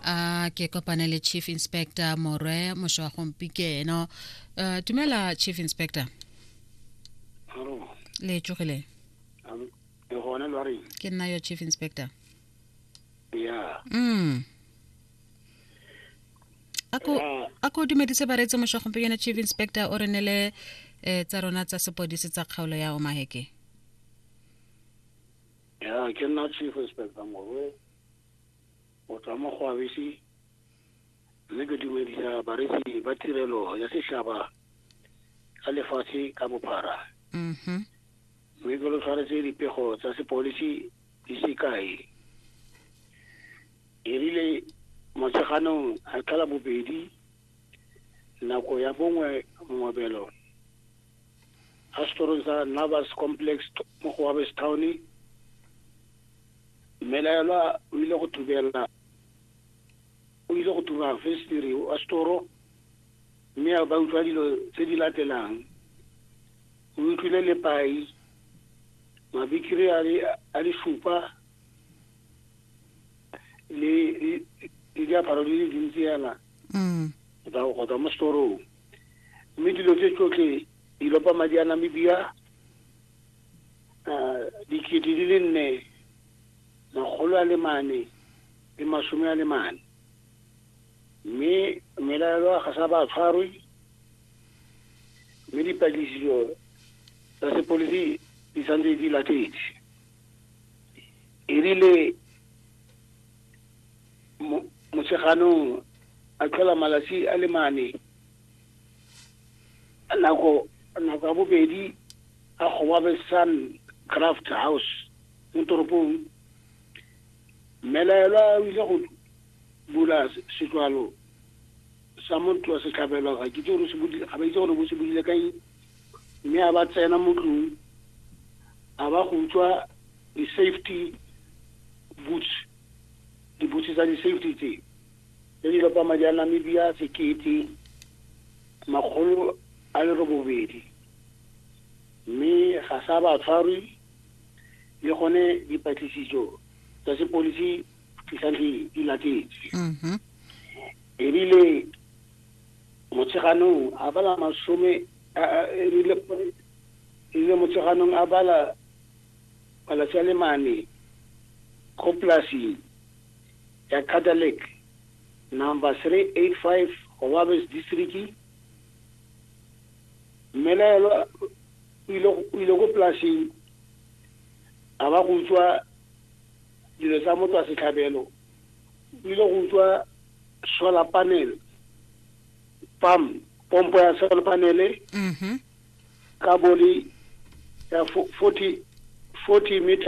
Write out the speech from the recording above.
a ke kopane le chief inspector morwe mosho wa gompikeno uh, dumela chief inspector le tsogile ke nna yo chief inspector yeah. mm. ako a ko dumedise bareetse mosho wa gompikeno chief inspector o re ne le eh, tsa rona tsa sepodisi tsa kgaolo ya omaheke ya ke nna chief inspector morwe Go tswa mo go Abisi, mme ke dumedisa bareetsi ba tirelo ya setšhaba ka lefatshe ka bophara mhm mme ke lo tshwaretse dipego tsa sepolisi di sekai e rile motsheganong a tlhola bobedi nako ya bongwe mongobelo a setorong sa navas complex mo go wabestown Mmelaelwa o ile go thubela o ile go thuba festiri wa setoro mme a ba utlwa dilo tse di latelang o utlwile lepai mabikiri a le a le supa le le- le diaparo di le dintsi yana Mm. go tswa- go tswa mo setorong mme dilo tse tsotlhe di lopa madi a namibia uh, dikete di le nne makgolo a le mane le masome a le mane mme melaelo ga sa ba tshwarwe mme dipatlisiso tsa sepolisi di santse di latetse erile motsheganong a tlhola malatsi a le mane nako nako ya bobedi a goba be sun craft house mo toropong mmelaelwa o ile go bula setlwalo sa motho wa setlhabelo ga ke itse gore se budile ga ba itse gore bo se budile kae mme a ba tsena mo tlong a ba go utswa di-safety boots dibutse tsa di-safety tse le dilopama ja Namibia sekete makgolo a le robobedi mme ga sa ba tshwarwe le gone dipatlisiso tsa sepolisi di santlhe di latetse mhm. ebile motsheganong a bala masome ebile ebile motsheganong a bala malatsi a le mane go polasing Ya Catholic, Number 385 go Babes District, mmelaelwa o ile go- o ile ko polaseng a ba go utswa dilo tsa motho wa setlhabelo o ile go utswa solar panel pam pompo ya solar panel mhm ka boli ya fo- 40 40 meters